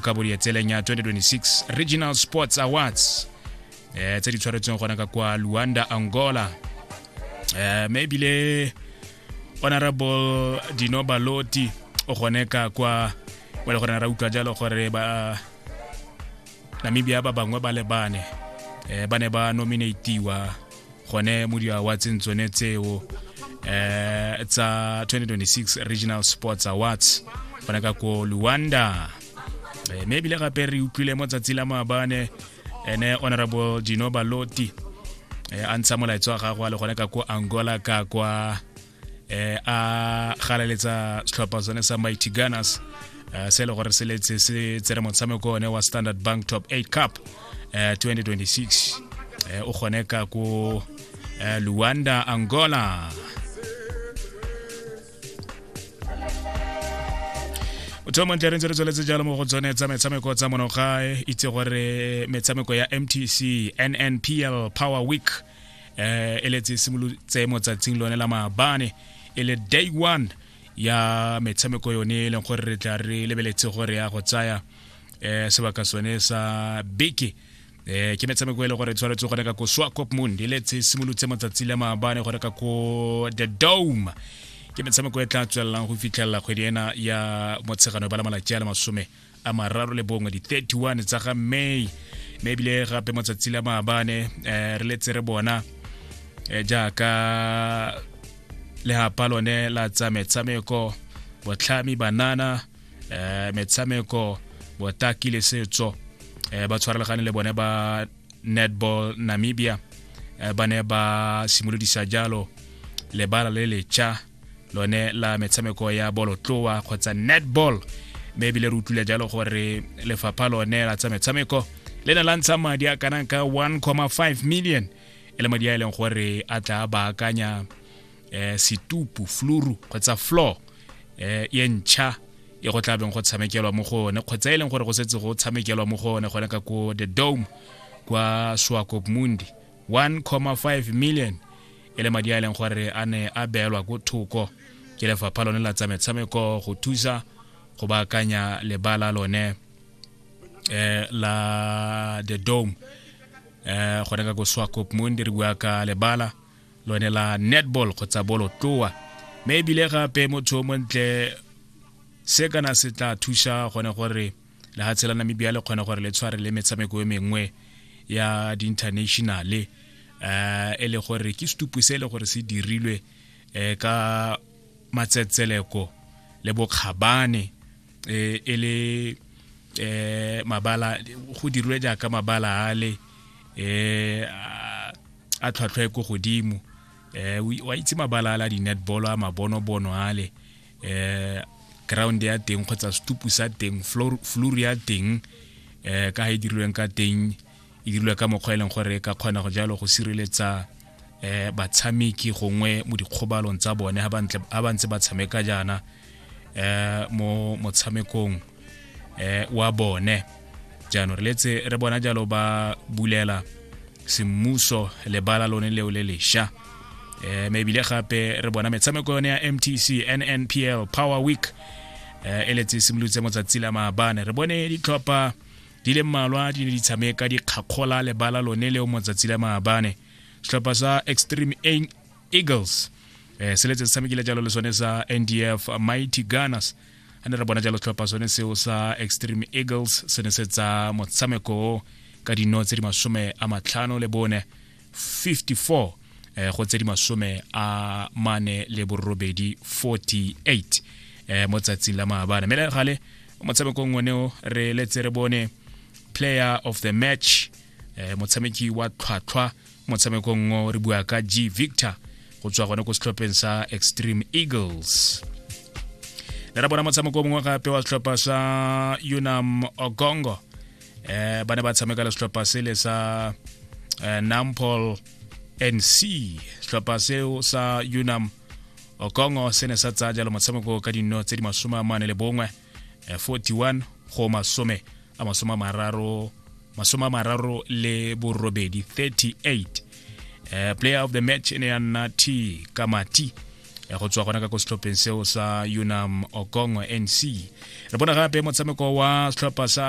ka bodi ya tseleng ya 2026 regional sports awards eh tse di tshwaretsweng gona ka kwa luanda angola eh mme ebile honorable dino baloti o gone ka kwa o le gore ra utlwa jalo gore ba namibia ba bangwe ba lebane eh ba ne ba nominatiwa gone mo diawatseng tsone tseo eh tsa 2026 regional sports awards gone ka ko luanda eh, mme ebile gape re utlwile mo tsatsi la maabane ene honorable dino baloti eh, a ntsha molaetso wa gagwe a le gone ka ko angola ka kwa eh a galaletsa setlhopha sone sa mighty gunners eh, se e le gore se letse se tsere motshameko one wa standard bank top 8 cup 2026 eh, eh, o kgone ka ko luanda angola motho montle re ntse re tsweletse jalo mo go tsone tsa metshameko tsa monogae itse gore metshameko ya mtc nnpl power week eh e letse simolotse motsatsing lone la maabane e le day one ya metshameko yone e leng gore re tla re lebeletse gore ya go tsaya eh sebaka sone sa beke eh ke metshameko e le gore tshwanetse go reka ko swakop mond e letse simolotse matsatsi le maabane go reka ko the dome ke metshameko e tla tswelelang go fitlhelela kgwedi ena ya motshegano ba la malatsi a le masome a mararo le bongwe di-31 tsa ga may mme ebile gape matsatsi la maabane um re letse re bona um jaaka legapa lone la tsa metshameko botlhami banana um metshameko botaki le setso um ba tshwarelagane le bone ba netball namibia um ba ne ba simolodisa jalo lebala le lecha lone la metshameko ya bolotloa kgotsa netball mme ebile re utlwile jalo gore lefapha lone la tsa metshameko le ne la ntsha madi a kanang ka 1,5 million e le madi a e leng gore a tla baakanya eh, setupu fluru kgotsa floor eh, ye ntšha e go tlabeng go tshamekelwa mo go one kgotsa e leng gore go setse go tshamekelwa mo go one gone ka ko the dome kwa swakop mundi 1.5 million e le madi a e leng gore a ne a beelwa ko thoko ke lefapha lone la tsa metshameko go thusa go baakanya lebala lone eh, la the dome eh, gone ka ko swakop mundi re bua ka lebala lone la netball kgotsa bolotloa mme ebile gape motho o montle se kana se tla thusa gone gore lehatshe la namibia le kgone gore le tshware le metshameko e mengwe ya di-internationale um e le gore ke setupu se e le gore se dirilwe um ka matsetseleko le bokgabane um e le um mabala go dirilwe jaaka mabala ale um a tlhwatlhwa e ko godimo um wa itse mabala ale a di-netball a mabonobono ale eh ground ya teng kgotsa setupu sa teng floor ya teng eh ka ha e dirilweng ka teng e dirilwe ka mokgwa e leng gore e ka kgona go jalo go sireletsa eh batshameki gongwe mo dikgobalong tsa bone ha ba ntse ba tshameka jaana eh mo motshamekong eh, wa bone jaanong re letse re bona jalo ba bulela semmuso lebala lone leo le lesha eh mebile gape re bona metshameko yone ya mtc nnpl power week eh e letse simolotse motsatsi la maabane re bone ditlhopha di le mmalwa di ne di tshameka dikgakgola lebala lone leo motsatsi la maabane setlhopha sa extreme eagles eh se letse se tshamekile jalo le sone sa ndf mighty gunners a ne re bona jalo setlhopha sone seo sa extreme eagles se ne se tsa motshameko ka dino tse di masome a matlhano le bone 54 eh, go tse di masome a mane le borobedi 48 eh, mo tsatsing la maabane mme le gale motshamekong oneo re letse re bone player of the match eh, motshameki wa tlhwatlhwa motshamekong ngo re bua ka g victor go tswa gone ko setlhopheng sa extreme eagles le ra bona motshameko mongwe gape wa setlhopha sa unam ogongo eh ba ne ba tshameka le setlhopha sele sa eh, nampol nc setlhopha seo sa unam okongo se ne sa tsaya jalo motshameko ka dino tse di masome a mane le bongwe 41 eh, go masome a masome a mararo masome a mararo le borobedi 38 eh, player of the match e ne ya nna t kamati eh, go tswa gona ka ko setlhopheng seo sa unam okongo nc re bona gape motshameko wa setlhopha sa